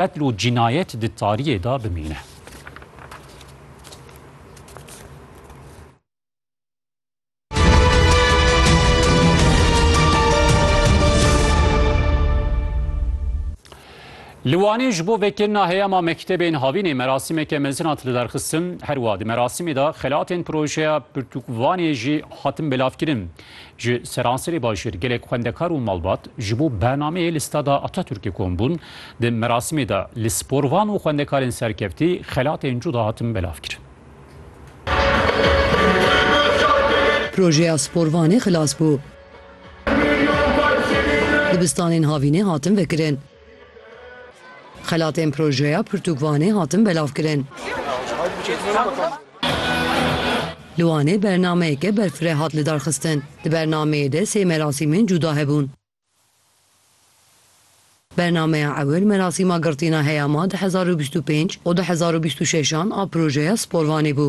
Qetl û cînayet di tariyê de bimîne. Li Wanê ji bo vekirina heyama mektebên havînê merasîmeke mezin hat lidarxistin. Her wiha di merasîmê de xelatên projeya Pirtûk Wanê jî hatin belavkirin. Ji seranserê bajêr gelek xwendekar û malbat ji bo bernameyê li Stada Ataturkê kom bûn. Di merasîmê de li sporvan û xwendekarên serkeftî xelatên cuda hatin belavkirin. Projeya sporvanê xilas bû. Dibistanên havînê hatin vekirin. Xelatên projeya pirtûkvanê hatin belavkirin. Li Wanê bernameyeke berfireh hat lidarxistin. Di bernameyê de sê merasîmên cûda hebûn. Bernameya ewil merasîma girtina heyama du hezar û bîst û pênc û du hezar û bîst û şeş an a projeya Sporvanê bû.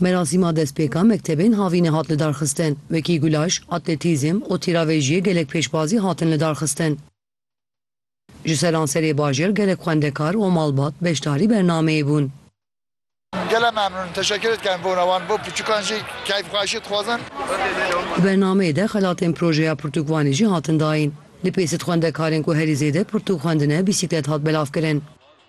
Merasîma destpêka mektebên havînê hat lidarxistin, wekî gulaş, atletîzm û tîravêjiyê gelek pêşbazî hatin lidarxistin. Ji seranserê bajêr gelek xwendekar û malbat beşdarî bernameyê bûn. Gele memnûn in, teşekkür dikerim bona wan, bo pirtûkan jî keyfxweşî dixwazin. Di bernameyê de xelatên projeya pirtûkvanê jî hatin dayîn. Li Pêsit xwendekarên ku herî zêde pirtûk xwendine bîsîklet hat belavkirin.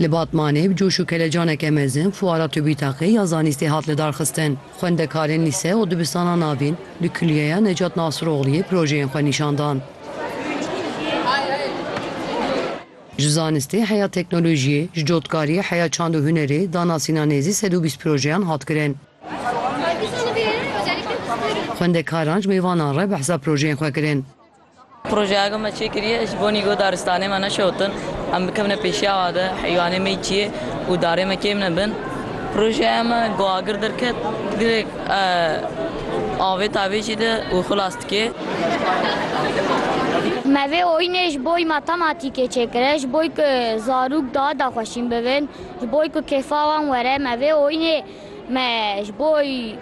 Li Batmanê bi coş û kelecaneke mezin fuara TÜBİTAK'ê ya zanîstê hat lidarxistin. Xwendekarên lîse û dibistana navîn li Kulîyeya Necat Nasirogliyê projeyên xwe nîşan dan. Ji zanistê heya teknolojiyê, ji dotkariyê heya çand û hunerê da nasîna nêzî sed û bîst projeyan hat kirin. Xwendekaran ji mêvanan re behsa projeyên xwe kirin. Projeya ku me çêkiriye ji bo nîgo daristanê me neşewtin, em bikevine pêşiya we de heywanê me yî çiyê û darê me kêm nebin. Projeya me ku agir derket girêk avê tavê jî de û xilas dike. Me vê oyînê ji bo matematîkê çêkiriye ji bo ku zarok daha daxweşîn bibin, ji bo ku kêfa wan were me vê oyînê Me ji bo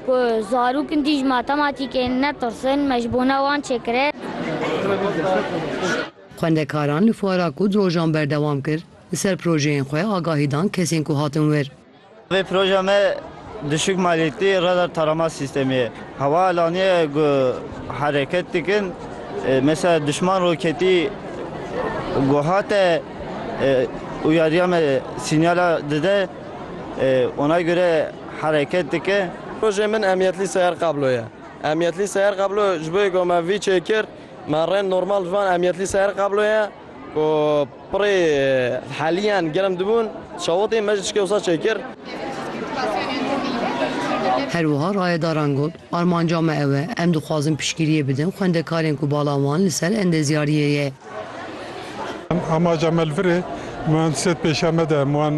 ku zarok in dîj matematîkê netirsin, me ji bona wan çêkirê. Xwendekaran li fuara ku di rojan berdewam kir, li ser projeyên xwe agahî dan kesên ku hatin wir. Vê projeya me düşük maliyetli radar tarama sistemî ye. Hewa alaniye ku hereket dikin, mesela duşman roketî ku hate uyariya me sinyala dide. Ona göre hereket dike. Projeyê min emniyetlî seyer kablo ye. Emniyetlî seyer kablo ji bo yê ku me vî çêkir me rê normal ji van emniyetlî seyer kablo ye ku pirê heliyan germ dibûn çewitî me ji çikê wisa çêkir. Her wiha rayedaran got, Armanca me ew e, em dixwazin piştgiriyê bidin xwendekarên ku bala wan li ser endezyariyê ye. Amaca me li vir e. Min wan sê di pêşiya me de min wan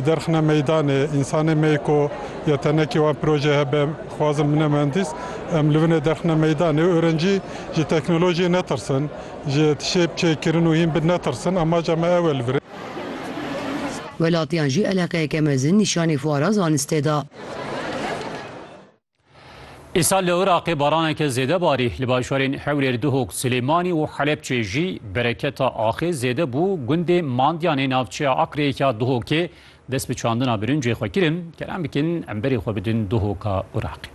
derxine meydanê. Însanê me yê ku ya tenekê wan projeyê hebe dixwazin bine muhendîs. Em li vinê derxine meydanê. Orencî ji teknolojiyê netirsin. Ji tişê bi çê kirin û hîn bin netirsin. Amaca me ew e li vir e. Welatiyan jî eleqeyeke mezin nîşanê fuara zanistê da. Îsal li Iraqê baraneke zêde barî, li bajarên Hewlêr, Duhok, Silêmanî û Helepçê jî bereketa axê zêde bû. Gundê Mandiyanê navçeya Akreyê ya Duhokê dest bi çandina birincê xwe kirin. Kerem bikin em berê xwe bidin Duhoka Iraqê.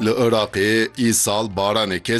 Li Iraqê îsal baraneke